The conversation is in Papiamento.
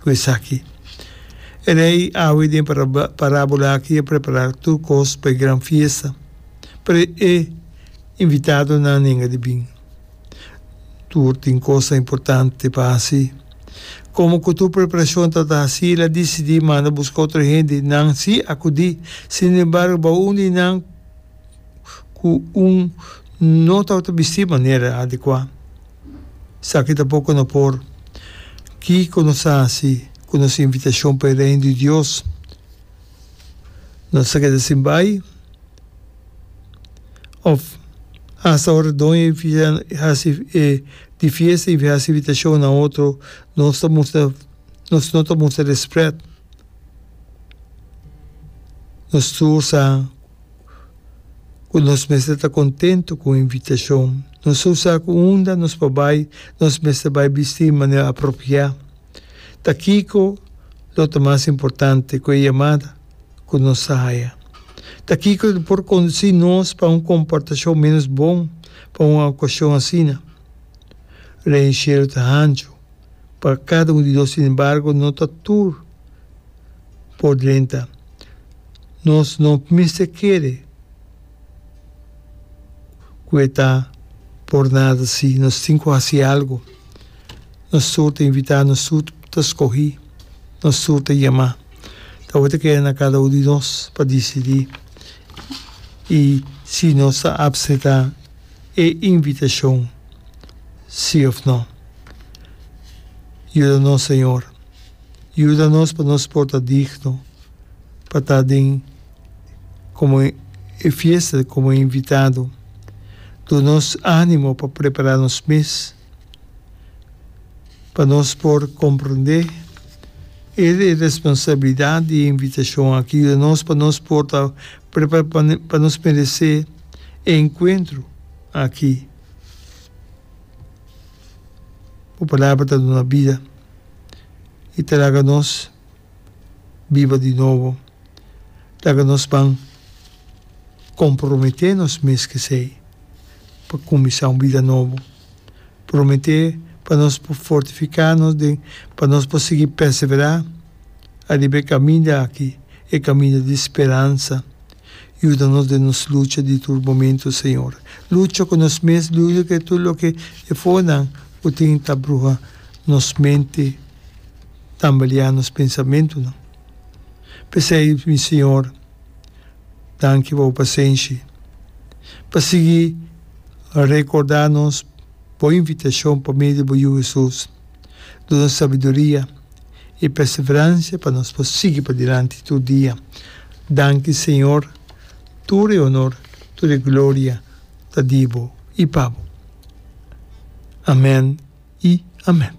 ku esaki. E rei awe den parábola akí a prepará tur kos pa e gran fiesta, pero e invitadonan a nenga di bin. Tur tin kosnan importante pa hasi. Komo ku tur preparashon ta ta hasí, el a disidí manda buska otro hende, nan sí akudí. Sinembargo, bao un di nan. ku un no tabata bistí manera adekuá. Esaki ta poko no por. Kiko nos ta hasi ku nos invitashon pa e Reino di Dios? Nos ta keda sin bai? Òf asta ora doña di fiesta i hasi invitashon na otro nos ta mustra nos no ta mustra rèspèt? Nos tur sa. ku nos mester ta kontentu ku invitashon. Nos ta usa ku unda nos por bai nos mester bai bistí manera apropiá. Ta kiko lo ta mas importante ku e yamada ku nos ta haya? Ta kiko lo ta por kondusí nos pa un komportashon ménos bon pa un okashon asina? Rei di Shelu ta hancho pa kada un di nos, sin embargo, no ta tur. por drenta. Nos no mester kere ku e ta por nada. Si nos tin ku hasi algu, nos tur ta invitá, nos tur ta skohí, nos tur ta yamá. Awor ta keda na kada un di nos pa disidí. I si nos ta apsetá e invitashon sí òf nò. Yuda nos, señor. Yuda nos pa nos por ta digno pa ta den komo e fiesta komo e invitado. Duna nos ánimo pa prepará nos mes pa nos por komprendé e responsabilidat di e invitashon akí. Yuda nos pa nos por ta prepará pa nos meresé e enkuentro akí. Bo palabra ta duna bida. i ta laga nos biba di nobo, laga nos ban komprometé nos mes k'esei pa kuminsá un bida nobo, prometé pa nos por fortifiká nos den pa nos por sigui perseverá ariba e kaminda aki, e kaminda di speransa. Yuda nos den nos lucha di tur momentu, Señor. Lucha cu nos mes, lucha cu e tur loke e fonan cu tin ta bruha nos mente, tambaleá nos pensamentunan. P'esei, mi Señor, danki pa Bo pasenshi, pa sigui recordá nos Bo invitacion pa medio di Bo Yu Hesus. Duna sabiduria i perseverancia pa nos por sigui padilanti tur dia. Danki Señor, tur e honor, tur e gloria ta di Bo i pa Bo. Amen i amen.